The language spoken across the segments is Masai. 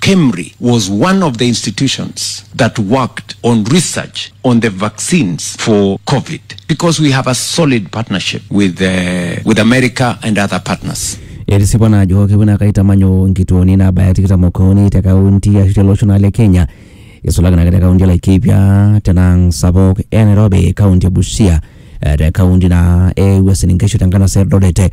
KEMRI was one of the institutions that worked on research on the vaccines for COVID because we have a solid partnership with, uh, with America and other partners. etisipa naa ajo kepuo naa kaitamanyu nkituoni naabaya tikitam okuni te kaunti ashu tele osho naa le kenya isulaki naake te kaunti e laikipia tenang sapuk e nairobi kaunti e busia eh, te kaunti naa e uasin nkishu te nkanasa e eldoret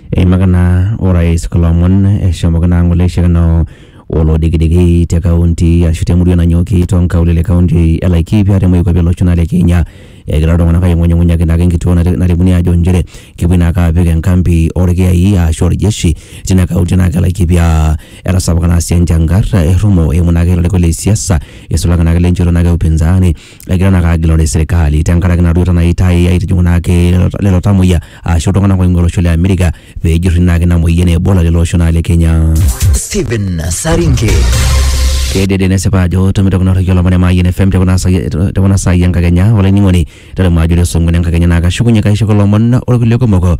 Eimaka naa orais kulo omon eshomoki naa ng'ole aishakino olodikidiki te kaunti ashu te murua nanyooki too nkaulele e kaunti e Laikipia te moikuape o losho naa le Kenya. Egira iltung'anak aing'unyung'unyaki naake enkituo naripuni aajo inchere kepuoi naake aapik enkambi olkiyai ashu oljeshi tina kaunti naake e Laikipia. Etasapuka naa sii enchangar errumo eimu naake ilarikok le siasa eisulaki naake ilenchoto naake e upinzani egira naa agilore serikali tenkaraki naduoita naa itai aitijing'u naake lelo- lelo tamoyia ashu iltung'anak oing'ua olosho le Amerika pejurri naake ina moyian e Ebola lelo osho naa le Kenya. Stephen Saringe. Kedede nesipa ajo tomitoki norriki olomoni Mayian FM tekuna sai tekuna sai enkakenya olainining'oni tolimu ajo ore song'wen enkakenya naa kashukunye kaisho kulo omon orkulie kumok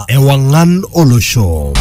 Ewang'an olosho.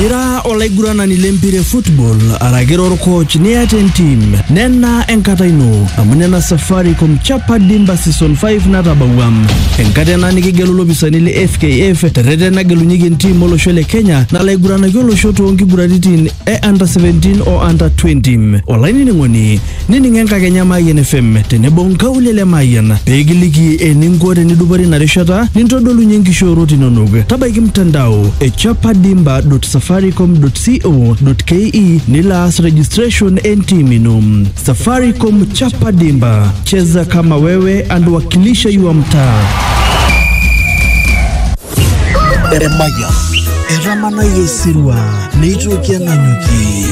Ira olaiguranani lempira e football araki ira orkoch niata entim nena enkata ino amu nena Safaricom Chapa Dimba Season 5 natabawua enkata ena nikigelu lopisani le FKF terreten nagelunyeki entim olosho le Kenya nalaiguranaki olosho toonkiguraritin e under 17 o under 20 olainining'oni Nining enkakenya Mayian FM tenebo nkaulele Mayian pee kiliki eninko tenidupore ina rishata nintodolunye nkishoorot inonok. Tabaiki mtandao e chapadimba.safaricom.co.ke nilo aas registration e ntiim ino. Safaricom Chapa Dimba, cheza kama wewe and wakilisha your mtaa. Emayian. Etamanayie osirua neitoki ang'amuki.